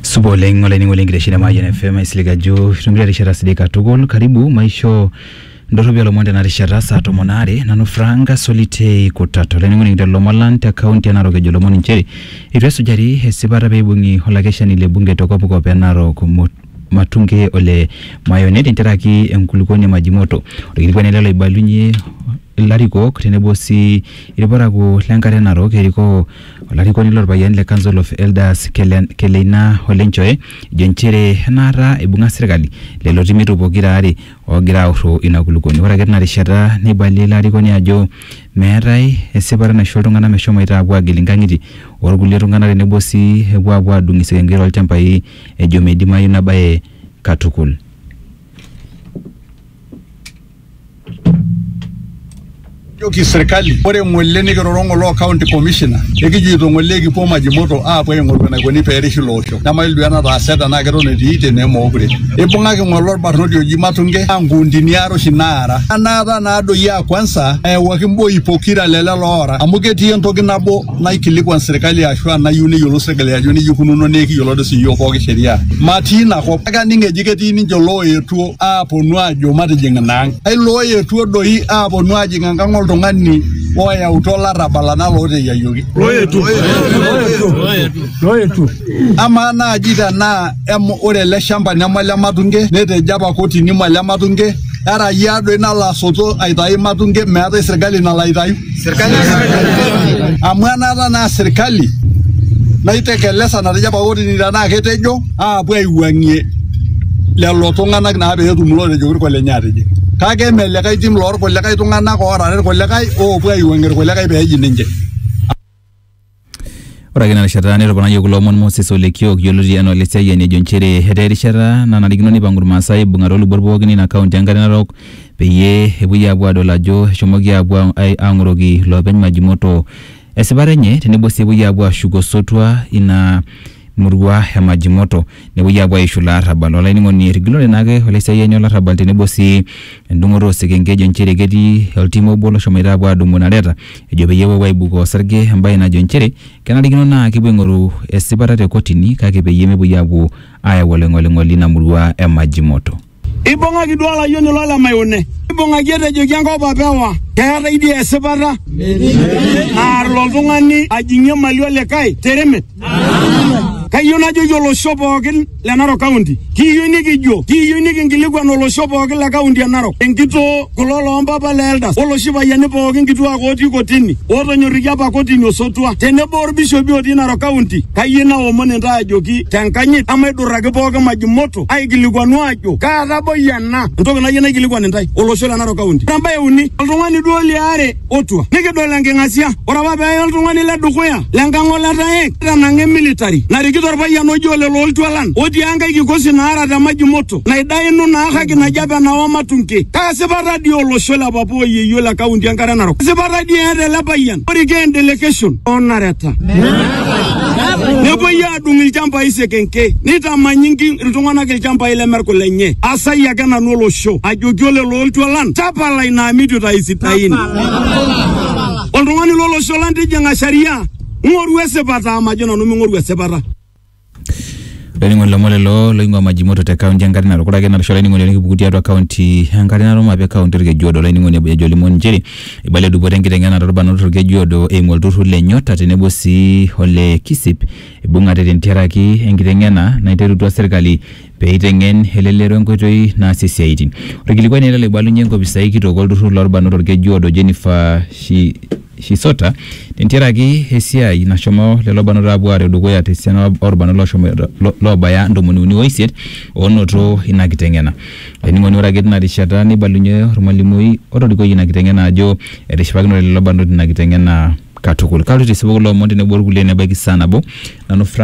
supa oleng olainining'oni lenkitesheni e Mayian FM aisilig ajo itumito erishata sidai katukul karibu maisho ndorropi olomon tena rishata saa tomon aare nanu Frank Solitei Kutata olainining'oni kitok lomon lang te kaunti e Narok ejo lomon inchere eitu esujari esipata peibung'i olakeshani le bunge te kopkop e Narok Mo- Matunge ole Mayone tenteraki enkulukuoni e Majimoto orkilikuai ele loibalunyie ilarikok tenebo sii irparakuo le nkare narok erikoo Olarikoni lorpayiani le Council of Elders Kele- Keleina Ole Nchoe ejo nchere enaata eibung'a serkali lelo timitu pokira aare oogira aurro ina kulukuoni. Ore ake tina rishata neibalie ilo arikoni ajo meetae esipata naisho iltung'ana meshomoita apuo agil inkang'itie orkulie tung'ana tenebo sii epuo apuo adung isekenkei too lchambai ejo meidimayu ina bae katukul. Joki sirkali ore ng'ole nikiroro ng'ole o county commissioner ekijoito ng'ole ekipuo Majimoto aapuo aing'oru enaikoni pee erishi ilo osho nemayiolo duo enataase tenaa keton etii tenaa emookure. Eibung'aki ng'ole olbarnoti oji Matunge naa nkuundini are oshi naara. Anaata naadoi aa kwanza eyawuaki mboi pokira le lelo oora amu ketii entoki nabo. naikilikuan serkali ashu anayieu neyiolou serkali ajo nejia ikununo naa ekiyiolo doi siyiok pooki sheria matii ina kop kake aning eji ketii ninche looyetuo aaponu aajo matijing ina ang ai looyetuo doi aaponu aajing enkang oltung'ani oyautua olarrabal anaa looteyiayioki amaa naaji tenaa em- ore ele shamba neme ole matunge netejo apa kotini mole matunge era yia doi nalo asoto aitayu matunge meetae sirkali nalo aitayu amu enaata naa sirkali naitekelesa natejo apa kotini tenaa ketejo aapuo aiwuang'ie lelo tung'anak naa peetum lootejo orko lenye atijing kake eme likae tim lorkulikae tung'anak oorare irkulikae oopuo aiwuang'ie irkulikae peeji ninche Ore ake ina rishata netoponayie kulo omon Moses Ole Kiok yioloti anaa Ole Siayiani ejo nchere etaa erishata nanarikino neipang'u Irmaasai aibung'a too lubot pookin ina kaunti enkare narok peyie epuoi aapuo aadol ajo eshomoki aapuo aang'oroki iloopeny Majimoto esipata enye tenebo sii epuoi aapuo aashuk osotua ina murua e Majimoto. nepuoi aapuo aishu ilo arrabal olainining'oni errigilore naake olaisiayiani olarrabal tenebo sii endung'oto osekenke ejo nchere ketii oltim obo loshomoita apuo adumu inareta ejo peyie epuo apuo aibukoo osarge embaye najo nchere kenarikino naa kepuo aing'oru esipata te kotini kake peyie mepuoi apuo ayau oloing'oling'oli ina murua e Majimoto. Ibung'aki duo olayioni lo lemayone, ibung'aki etejoki enkop apa ewa, keeta idia esipata naar ilo tung'ani ajing'ie mali olikae teremet. Kayieu najoki olosho pookin le Narok County, kiyieu nikijo, kiyieu nikinkilikuan olosho pookin le kaunti e Narok, enkitoo kulo loompapa le Eldas, oloshi payiani pookin kituak otii kotini, ootonyorrikia apa kotini osotua, tenebo orbishopi otii Narok County, kayieu naomon intae ajoki tenkanyit, emaidurraki pookin maji moto. aikilikuanu ajo kaa taboi ena entoki nayieu naikilikuan intae olosho le Narok County. Ore embae uni, oltung'ani duo liare otua nikidol enking'asia. Ore apa pee eye oltung'ani le dukuya le nkang' oletaek tanang'a emilitari narikito orpayian oji ole Looltualan otii enkae kikosi naara te Majimoto naidainu naa haki naji apa enawa matunke. Kaa sipata dii olosho le papa o yeyio le kaunti enkare Narok? Kaa sipata dii eeta ele payian orikee endelekeshon oo nareta? Nepuoi adung ilchambai sekenke neitamanyinki iltung'anak ilchambai lemerku lenye asai ake nanu olosho ajoki olelo oltualan tapala ina amitu tai sidain oltung'ani lolosho lang tijing'a sharia ng'oru esipata amajo nanu ming'oru esipata Laining'oni lomon lelo loing'ua Majimoto te kaunti enkare natukuraki napisho laining'oni onikipuku tiatua kaunti enkare narum ape kaunti orkejuodo laining'oni ejo limon nchere Eibalia dupoto enkiteng'ena toolbarnot Olkeju Odo eimu olturrur le Nyota tenebo sii ole KISIP eibung'ate tentiaraki enkiteng'ena naiterutua serkali pee eiteng'en elelero enkoitoi naasie siaaitin. Olkilikuai naa ele loibalunye enkopisai kitok olturrur loolbarnot Olkeju Odo Jennifer Shisota tentiaraki esiaai nashomo lelo barnot aapuo aareu dukuya te siana olbarnot loobaya ntomoni uni o isiet oonoto ina kiteng'ena. Olainining'oni ore ake tina rishata neibalunye olmalimui otorikoyie ina kiteng'ena ajo etishipakinote lelo barnot ina kiteng'ena katukul. Kaloito aisipoo kulo omon tenebo olkulie nebaiki saa nabo. Nanu Frank.